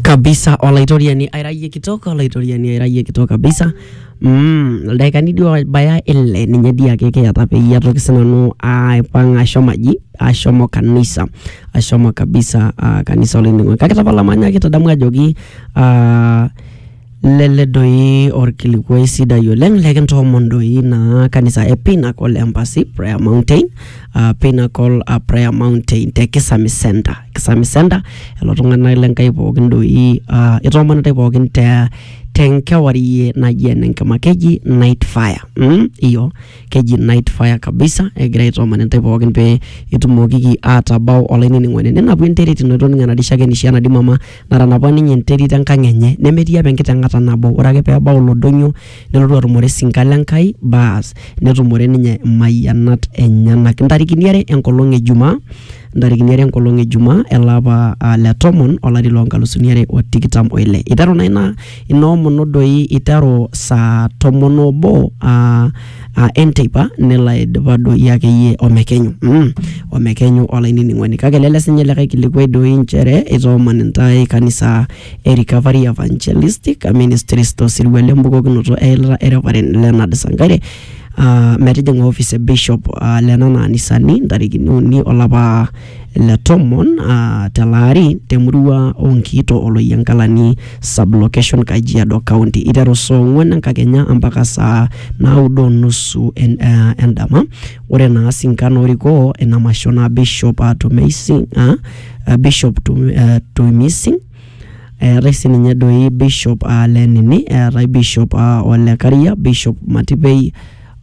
kabisa olaitoriani airayie kitok olaitoriani airayie kitok kabisa mm, ildaikani dii obaya ile ninye dii ake kiyata peyie atoki sinanu aipang ashomo aji ashomo kanisa ashomo kabisa uh, kanisa olainining'oni kake tapala manyaki tadamu ajoki uh, Lele doi orkilikuai sidai oleng lekintoomon doi naa kanisa e Pinnacle Embassy Prayer Mountain uh, Pinnacle uh, Prayer Mountain te Kisami Center Kisami Center lelo tung'anak le Nkai pookin doi uh, itoomonitae pookin te tenkewarie naji enenkima keji night fire mm, iyo keji night fire kabisa egira aitooman intae pookin pee itumokiki atabau olainining'oni ninapu enterit ino itoning'o enadishake nisho enadi mama natanapa ninye enterit enkang enye nemetii apa enkiteng'ata nabo ore ake pebau ilo donyio nelotu atumore sinka le Nkai baas netumore ninye imayianat enyenak intarikini are enkolong e jumaa intarikini are enkolong e jumaa ele apa uh, le tomon olari lonkalusuni are o tikitam oile iteru naa ina ina omono doi iteru saa tomon obo uh, uh, enteipa nelo aidipa doi akeyie omekenyu mm, omekenyu olainining'oni kake lele sinye likae kilikuai doi nchere itooman intae kanisa e recovery evangelistic ministries tosirua lembukokinoto eilata ereparen Leonard Sankaire uh, metijing'a office e bishop uh, lenana anisani ntarikini uni olapa le tomon uh, telaari temurua Onkiito Oloyiankalani sublocation Kajiado County iteru saa ong'uan enkakenya mpaka saa naudo onusu en, uh, endama. Ore naa sinkan orikoo ina masho naa Bishop uh, Tumeising, uh, uh, Bishop Tum, uh, Tuimising eetae sininye doi bishop uh, lenini eetae bishop uh, olekaria bishop matipei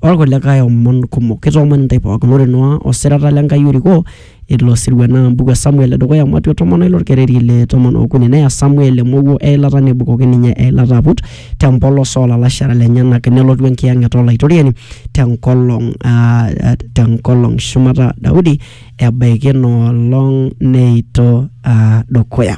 olkulikae omon kumok. Kitoomon intae pookin ore Noa o sirata le Nkai orikoo ilo sirua naa embuku e Samuel e dukuya, Matua tomon o ile olkereri le tomon okuni. Neya Samuel emowuo e ilata nebukoki ninye eilata aput te mpolos oo lalashera lenyenak nelotu Enkiyang'et o Laitoriani te nkolong aa te nkolong shumata Daudi ebaiki ina olong neito aa dukuya.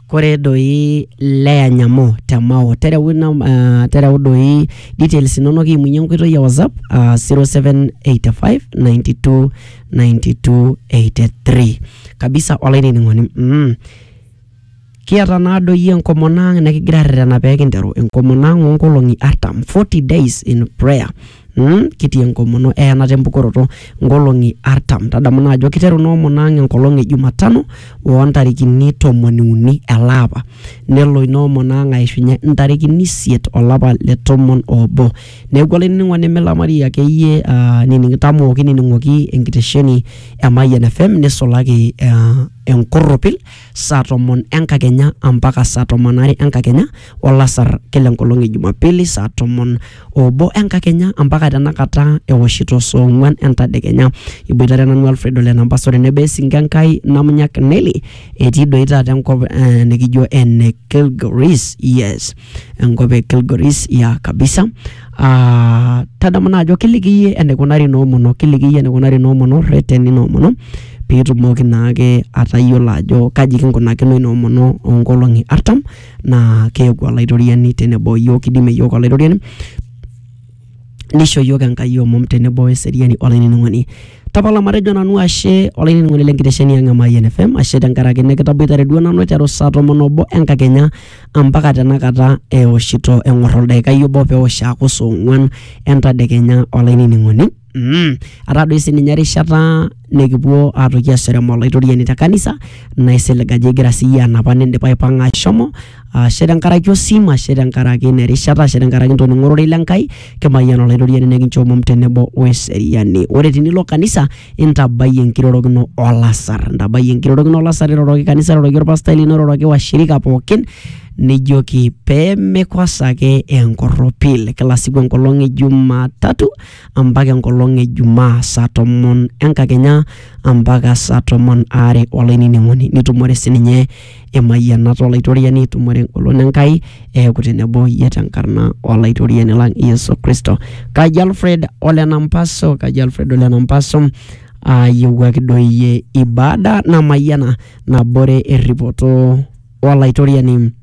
kore doi Lea Nyamo te Mao tereu, ina, uh, tereu doi details inonok imunye enkoitoi e WhatsApp uh, 0785 92 92 83 kabisa olainining'oni mm. kiata naa doi enkomono ang nikigira arretena pee kinteru enkomono ang oonkolong'i artam 40 days in prayer Mm, kitii enkomono eyanata empukoroto nkolong'i artam tadamu naa ajo kiteru ina omono ang enkolong e jumatano oontarikini tomoni uni ele apa nelo ina omono ang aishunye ntarikini isiet olapa le tomon oobo neeku olainining'oni milamari akeyie ah, nining tamoo kinining'oki enkitesheni e Mayian FM nisulaki ah, enkorropil saa tomon enkakenya ampaka saa tomon are enkakenya olasar kila enkolong e Jumapili saa tomon obo enkakenya ampaka tenakata ewoshito saa ong'uan entadekenya. Iboitare nanu Alfred Ole Nampasa ore nebo esinka Enkai Namunyak Nelly etii doi taata enkop eh, nikijo ene Kilgoris yes enkop e Kilgoris ya kabisa ah, tadamu naa ajo kiliki iyie eneikunari noomono kiliki iyie eneikunari noomono rreteni noomono piitumoki naake atayiolo ajo kaji kinkunakino inoomono onkolong'i artam naa keeku olaitoriani tenebo iyiook kidimie iyiook olaitoriani nisho iyiook Enkai omom tenebo weseriani olainining'oni tapala matejo nanu ashe olainining'oni lenkitesheni ang e Mayian FM ashe tenkaraki nikitaboitare duo nanu aiteru saa tomon obo enkakenya ampaka tenakata eoshito eng'or oldaikai obo peosh aaku saa ong'uan entadekenya olainining'oni ataa doi sininye erishata nikipuo atoki aserem olaitoriani te kanisa naisilig ajo igira siyie anapa nindipa aipang'a ashomo ashe tenkaraki osim ashe tenkaraki ina erishata ashe tenkaraki intoning'o ororei le Nkai kimayian olaitoriani nekincho omom tenebo weseriani ore tinilo kanisa intabai enkirorokino olasar intabai enkirorokino olasar iroroki kanisa iroroki orpastai lino iroroki washirika pookin nijoki pemekosaki enkorropil kila siku enkolong e jumatatu ampaka enkolong e Jumaa saa tomon enkakenya ampaka saa tomon aare olainining'oni nitumore sininye emayianata olaitoriani itumore engolon Enkai eeku tenebo iyie tenkarna olaitoriani lang Yesu Kristo. Kaji Alfred ole Nampaso, Kaji Alfred ole Nampaso ayiewuaki doi iyie ibada namayiana nabore erripoto olaitoriani.